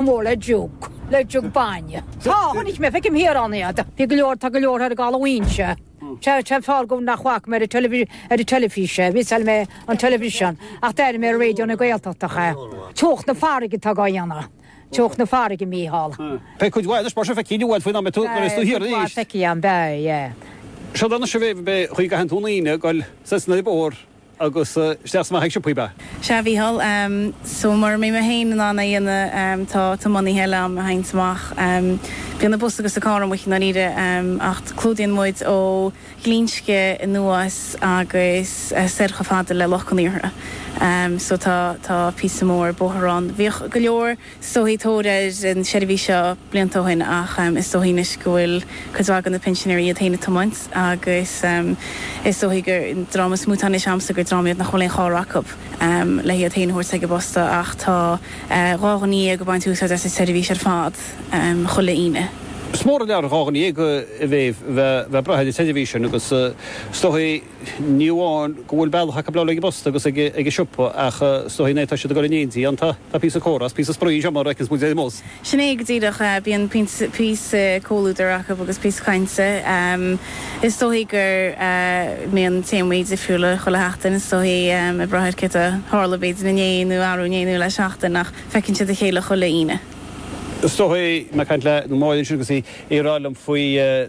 mór le jug, le jug bainne. Tá, chonaic mé, feicim thiar ann iad. Bhí go leor, tá go leor thiar i gCaladh Mhaínse. Sea, sea, fág dhom nach bhfaca mé ar an teilifís, ar an teilifís é, mhiosáil mé an teilifiseán, ach d'airigh mé ar Raidió na Gaeltachta é. Teocht na farraige atá dhá dhéanamh, teocht na farraige, a Mhícheáil. Beidh cuid mhaith anois, mar sin, feicfidh tú, bhuel, faoin am a bheas tú thiar arís. Beidh, cuid mhaith, feicfidh, beidh, yeah. Sea, anois a bheidh, chuaigh i gcaitheamh an Aoine, ghoil, sea, sna, ar. Agus isteach is amach ag siopaí, ba. Sea, a Mhícheáil. So, mura mbeidh mé féin in ann é a dhéanamh, tá tiománaithe eile a théanns amach. Bíonn an bus agus an carr amuigh i ndáiríre, ach clúdaíonn muid ó Ghlinsce anuas agus soir chomh fada le Loch Conaortha. So, tá, tá píosa mór bóthair ann. Bhíodh go leor. is dóichí tóir ar an seirbhís seo blianta ó shin ach is dóichí anois go bhfuil cuid mhaith de na pinsinéirí iad féin ag tiomáint agus is dóichí an dream is mó atá anois a'msa gur dream iad nach bhfuil aon charr acu le hiad féin a thabhairt ag an bposta ach tá dhá dhuine dhéag ag baint úsáid as an tseirbhís ar fad chuile Aoine. Is mór an lear, dhá dhuine dhéag, a bheidh ag brath ar an tseirbhís sin agus is dóichí, Ní amháin go bhfuil bealach acu le dul ag an bposta agus ag an siopa ach is dóichí nuair atá siad ag dul in éindí, tá, tá píosa comhrá is píosa spraoi anseo mar a fheiceanns muid é mós. Sin é go díreach. Bíonn píosa comhluadair acu agus píosa cainte. Is dóichí go mbíonn téamaí difriúla chuile sheachtain. Is dóichí ag brath ar céard a tharla b'fhéidir inné nó arú inné nó le seachtain ach feiceann siad a chéile chuile Aoine. Is bhí mé ag caint le Máirín ansin agus í ag rá liom faoi.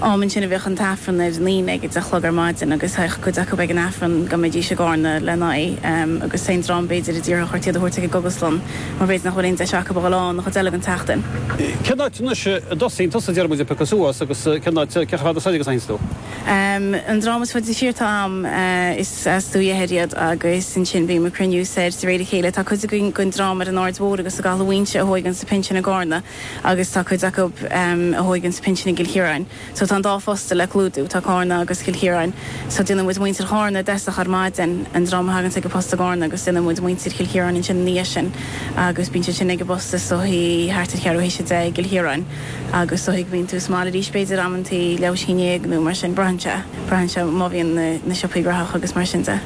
am ansin a bhíodh an tAifreann ar an Aoine ag a deich a chlog ar maidin agus théadh cuid acu ag an Aifreann go mbeidís i gCárna lena aghaidh agus aon dream b'fhéidir a d'iarrfadh ort iad a thabhairt ag an gcógaslann mar b'fhéidir nach bhfuil aon deis acu a dhul ann an chuid eile den tseachtain. Cén áit anois a dtosaíonn tusa, a deir muid ag piocadh suas, agus cén áit, cé chomh fada soir agus a théanns tú? An dream is faide siar atá a'm is as Leitir Deiscirt iad agus ansin bím ag cruinniú soir de réir a chéile. Tá cuid againn den dream ar an Aird Mhóir agus i gCaladh Mhaínse a thóigeanns a pinsean i gCárna. agus tá cuid acu a thóigeanns an pinsean i gCill Chiaráin. So tá an dá phost le clúdú, tá Cárna agus Cill Chiaráin. So déanann muid muintir Chárna i dtosach ar maidin an dream a thagann ag an bpost i gCárna agus déanann muid muintir Chill Chiaráin ansin ina dhiaidh sin agus bíonn siad sin ag an bpost is dóichí thart ar cheathrú théis a deich i gCill Chiaráin agus is dóichí go mbíonn tú sa mbaile arís b'fhéidir amantaí leathuair théis a haon déag nó mar sin. Braitheann sé, braitheann sé má bhíonn na siopaí gnóthach agus mar sin de.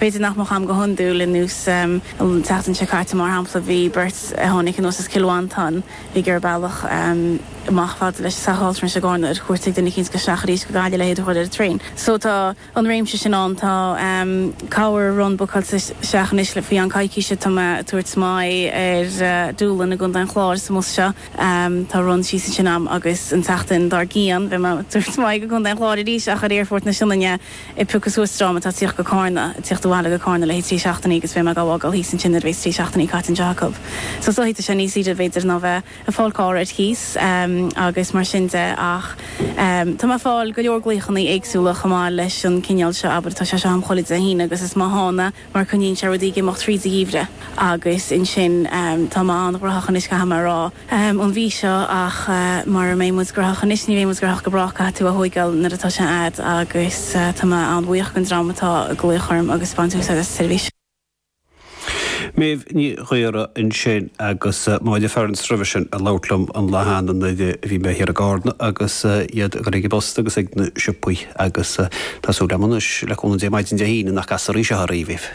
B'fhéidir nach mbeadh a'm go hiondúil anois an tseachtain seo caite, mar shampla, bhí beirt a tháinig anuas as Cill Mhantáin bhí ag iarraidh bealach amach chomh fada leis an teach altranais i gCárna ar cuairt ag duine eicínt agus isteach arís go Gaillimh le hiad a chur ar an traein. So tá an réimse sin ann. Tá cúpla run bookáilte isteach anois le faoi cheann coicíse tá mé ag tabhairt m'aghaidh ar Doolin i gContae an Chláir sa mbus seo. Tá run síos ansin agam agus an tseachtain dár gcíonn bheidh mé ag tabhairt m'aghaidh go Contae an Chláir arís ach ar Aerfort na Sionainne. ag piocadh suas dream atá ag tíocht go Carna, ag tíocht abhaile go Carna le haghaidh trí seachtainí agus beidh mé dhá bhfágáil thíos ansin nuair a bhéas trí seachtainí caite anseo acu. So so titeann sé níos ísle b'fhéidir ná bheith ag fáil carr ar chíos agus mar sin de ach tá mé ag fáil go leor glaochanna éagsúla chomh maith leis an cineál seo, abair tá sé seo a'm chuile Dé hAoine agus is má thána mar coinníonn sé rudaí ag imeacht thríd an ngeimhreadh agus ansin tá mé an-ghnóthach anois caithfidh mé a rá, an mhí seo ach mara mbeidh muid gnóthach anois ní bheidh muid gnóthach go brách, caithfidh tú a thóigeáil nuair atá sé a'd agus tá mé an-bhuíoch den dream atá ag glaoch orm agus ag baint úsáid as an tseirbhís. Méabh Ní Ghaora ansin agus Máire Ferns roimhe sin ag labhairt liom an lá cheana nuair a bhí mé thiar i gCarna agus iad ag Oifig an Phosta agus ag na siopaí. Agus tá súil agam anois, le cúnamh Dé, maidin Dé hAoine nach gcastar í seo ar aoibh.